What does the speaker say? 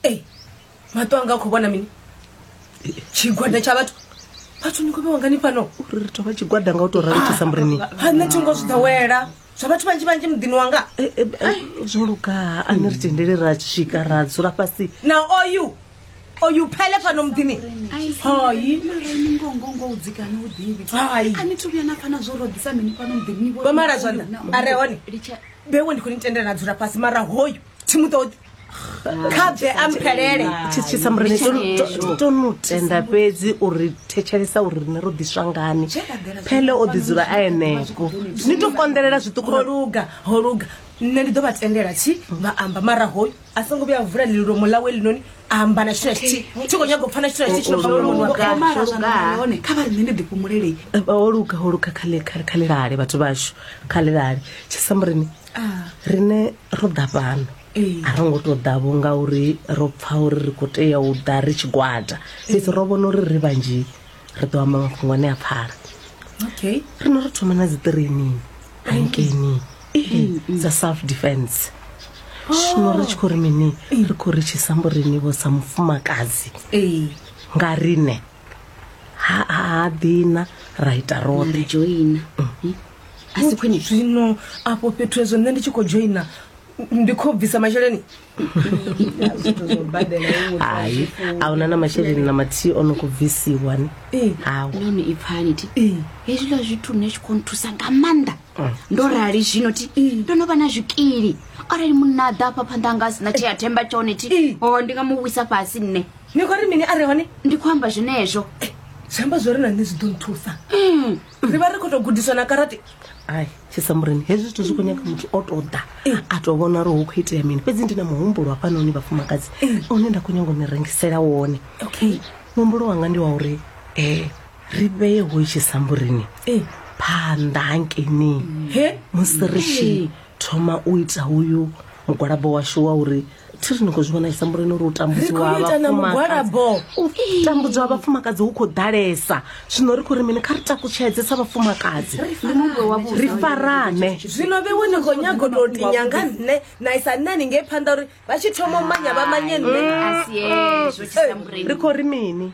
ei maṱo anga khou vhona mini tshigwada tsha vhathu vhathu ni khou vhewangani fhano uri ri tovha tshigwada nga u to rali tshisa murini ha nṋe thi ngo zwi ḓowela zwa vhathu vhanzhi vhanzhi muḓini wanga eh, eh, eh, zwo luga ani ri tendele ra swika ra dzula fhasi na oyu oyu phele fhano muḓini hayiomala zwanḓa a re hone bewe ndi khou ni tendela na dzula fhasi mara hoyu thi mu ṱoḓi kha bve a mphelele tshitshisa mureni to no tenda fhedzi uri thetshelesa uri rine ro ḓiswa ngani phele o ḓi dzula a enefo ni to konḓelela zwiṱuku ho luga ho luga nṋe ndi ḓo vha tendela tshi vha amba mara hoyu a songo vhuya vula lilomo ḽawe linoni amba na tshithu tshi tshi kho nyaga u pfana tshithu tshi tshino hone kha vha nṋe ndi ḓi fhumulele ho luga ho luga kha kha kha lilale vhathu vhashu kha lilale tshi samurini ah. rine ro ḓa fhano a ro ngo tou ḓavho ngauri ro pfa uri ri khou tea u ḓa ri tshigwada fhedzi ro vhona uri ri vhanzhi ri ḓo amba mafhungo ane a pfala okay ri no ri thoma na dzi training hankeni dza self defense zwino ri tshi khou ri mini ri khou ri tshi sambo rini vho sa mufumakadzi nga rine ha ha dina ra ita roṱhe joina a si khwine zwino afho fhethu hezwo nṋe ndi tshi khou dzhoina ndi khou bvisa masheleni hai a huna na masheleni na mathihi o no khou bvisiwa ni Ee. hawu noni i pfani ti Ee. hezwiḽa zwithu nṋe zwi khou nthusa nga maanḓa ndo rali zwino ti ndo no vha na zwikili arali munna a ḓa afha phanḓa anga a sina tshea themba tshone ti Ee. o ndi nga mu wisa fhasi nṋe ni khou ri mini a re hone ndi khou amba zwenezwo zwi amba zwo ri na nṋe zwi ḓo nthusa Mm. ri vha ri khou tou gudiswa na karate ai tshisamureni hezwi zwithu zwi khou nyaga muthu o tou ḓa a tou vhona uri hu khou itea mini fhedzi ndi na muhumbulo hafhanoni vhafumakadzi une nda khou nyanga u ni rengisela wone okay muhumbulo wanga ndi wa uri um ri vheye hoyi tshisamburini phanḓa hankeini he musi ri tshi thoma u ita uyu mugwalabo washu wa uri thi ri ni khou zwi vhona tshisambuloni uri u tambudziwa vhafumakadzi vhafumakadzi hu khou ḓalesa zwino ri khou ri mini kha ri takutshedze sa vhafumakadzi ri farane zwino vhe wo ni khou nyago tou tinya nga nṋe na isa nṋe ni ngei phanḓa uri vha tshi thoma u manya vha manye nṋe ri khou ri mini